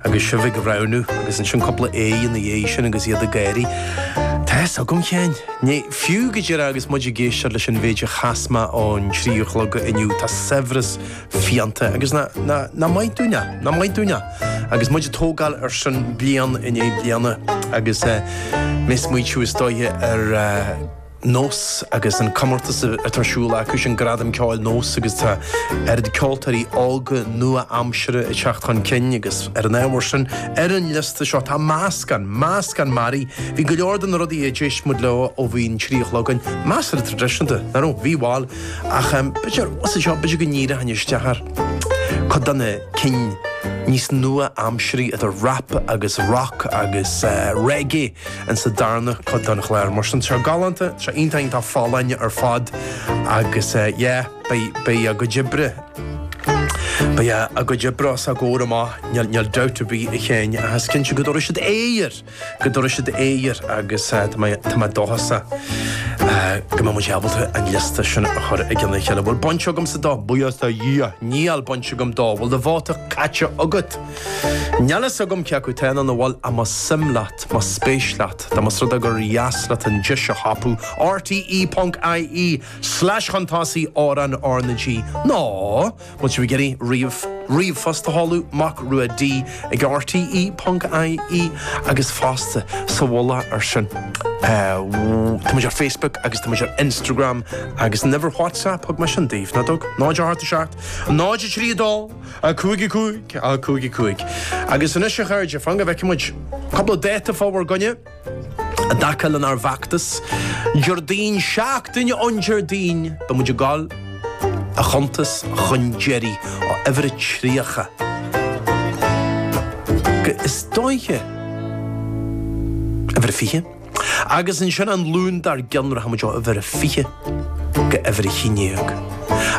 agus sibh ag roghnú agus ansin cúpla aoi ina dhiaidh sin agus iad ag éirí. Tá a fhios agam féin. Ní, fiú go deireadh agus muid ag éisteacht leis an mhéid a chas mé ó an trí a chlog inniu, tá saibhreas fiáin ann agus nach, nach, nach maith dúinn é, nach maith dúinn é. Agus muid ag tógáil ar sin bliain i ndiaidh bliana agus eh, mé ag smaoitiú is dóiche ar eh, Nós agus an comórtas atá ar siúl acu sin, Gradam Ceoil Nós, agus tá oiread ceoltóirí óga nua-aimseartha ag teacht chun cinn agus ar an ábhar sin, ar an liosta seo tá meascán, meascán mearaí. Bhí go leor de na rudaí a d'éist muid leo ó bhí an trí a chlog ann, measartha traidisiúnta, nach raibh? Bhí, bhail. Ach em, b'fhéidir, os a choinne sin, b'fhéidir go ndíreochainn isteach ar chuid de na cinn níos nua-aimsirí idir rap agus rock agus eh reggae. Ins an darna cuid den chlár. Mar sin seo galánta, seo iontach tá siad folláin ar fad agus yeah beidh beidh a gcuid oibre beidh a a gcuid oibre os a gcomhair amach níl níl dabht ar bith ach inn ach is cinnte go dtabharfaidh siad aire go dtabharfaidh siad aire agus eh, tá mé tá mé dóchasach, go mbeidh muid ábalta an liosta sin a chur i gcionn a chéile bhfuil baint agamsa dó buíochas a Dhia níl baint agam dó bhfuil do bhóta caite agat Níl fhios agam cé acu téann an bhuel a más suim leat, más spéis leat, nó más rud é gur dheas leat an deis a thapú, rte.ie/cuntasaí, amhráin R na G, nó, má tá sibh ag iarraidh ríomh, ríomhphost a sheoladh, Mac Rua D ag rte.ie, agus fosta, sa mhullach ar sin, tá muid ar Facebook agus tá muid ar Instagram agus an uimhir WhatsApp thug mé sin daoibh, nach dtug? 087 932. 5 5 5 5 Agus anois, a chairde, fan go bhfeicfidh muid cúpla dáta fá bhur gcoinne i dtaca lenár bhfeachtas. Déardaoin, seachtain ón Déardaoin, beidh muid ag dul a chuntas chun deiridh ó uimhir a 30 go, is dóiche, uimhir a 20? Agus ansin an Luan dár gcionn rachaimid ó uimhir a fiche go huimhir a haon déag.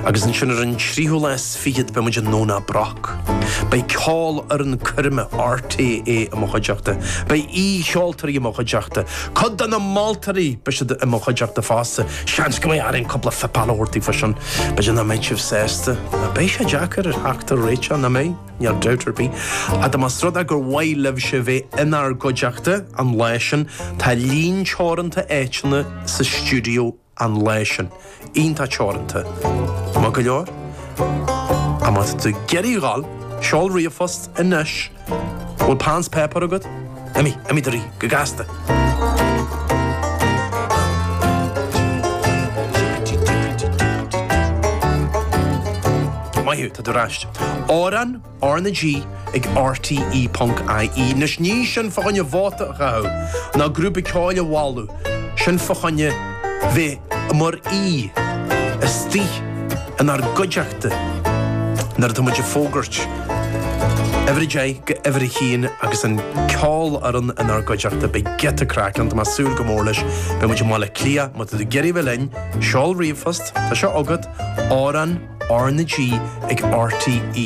Agus ansin ar an tríú lá is fichead beimid i nDomhnach Broc. Beidh ceolfhoireann coirme RTÉ i mo chuideachta. Beidh aoi-cheoltóirí i mo chuideachta. Cuid de na moltóirí, beidh siad i mo chuideachta fosta. Seans go mbeidh orainn cúpla feipeáil a thabhairt daoibh freisin. B'fhéidir nach mbeidh sibh sásta. Beidh sé deacair orthu teacht ar réiteach, nach mbeidh? Níl dabht ar bith fá dtaobh de, más rud é gur mhaith libhse bheith inár gcuideachta an lá sin, tá líon teoranta áiteanna sa stiúideo an lá sin. Iontach teoranta. Maith go leor? An bhfuil tú ag iarraidh a dhul? Seol ríomhphost anois. An bhfuil peann 's páipéar agat? Imigh, imigh de rith, go gasta. Maith thú, tá tú ar ais. Amhrán R na G ag RTÉ.ie. Anois ní sin fá choinne vóta a chaitheamh ná grúpa ceoil a mholadh, sin fá choinne bheith mar aoi istigh inár gcuideachta. Márta. Nuair atá muid ag fógairt uimhir a deich go uimhir a haon agus an cheolfhoireann inár gcuideachta, beidh giota craic ann, tá mé ag súil go mór leis. Beidh muid i mBaile Átha Cliath, má tá tú ag iarraidh a bheith linn, seol ríomhphost, tá seo agat, amhrán R na G ag RTÉ.